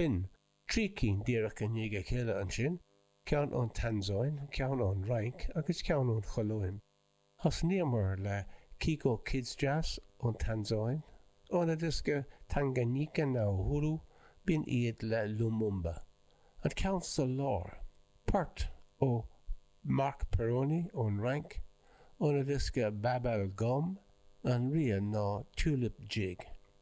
B'in, trí cinn díreach i ndiaidh a chéile ansin, ceann ón Tansáin, ceann ón Fhrainc agus ceann ón Cholóim. Thosnaíomar le Kiko Kids Jazz ón Tansáin, óna diosca Tanganyika na Uhuru, b'in iad le Lumumba. An ceann sa lár, port ó Marc Perrone ón Fhrainc, óna diosca Babel Gomme, an rian ná Tulip Jig.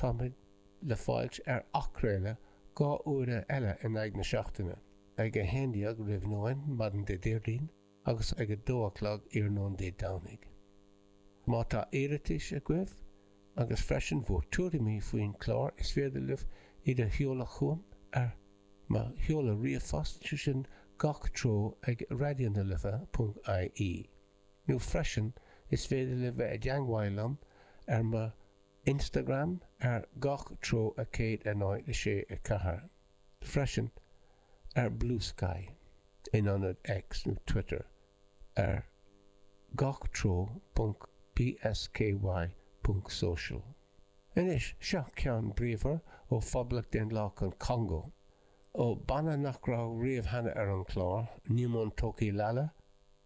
Táimid le fáilt ar athchraoladh dhá uaire eile in aghaidh na seachtaine, ag 11 roimh nóin maidin Dé Déardaoin agus ag 2 a chlog iarnóin Dé Domhnaigh. Má tá iarratais agaibh, agus freisin bhur tuairimí faoin chlár is féidir libh iad a sheoladh chugam ar mo sheoladh ríomhphost, sé sin gach treo ag raidionalife ponc ie, nó freisin is féidir libh bheith i dteangmháil liom ar mo. Instagram ar gach treo a 109 6 4 freisin ar Bluesky in ionad X nó Twitter ar gach treo ponc bsky ponc social. Anois, seo ceann bríomhar ó Phoblacht Dhaonlathach an Chongó, ó banna nach raibh riamh cheana ar an chlár, Nimon Toki Lala,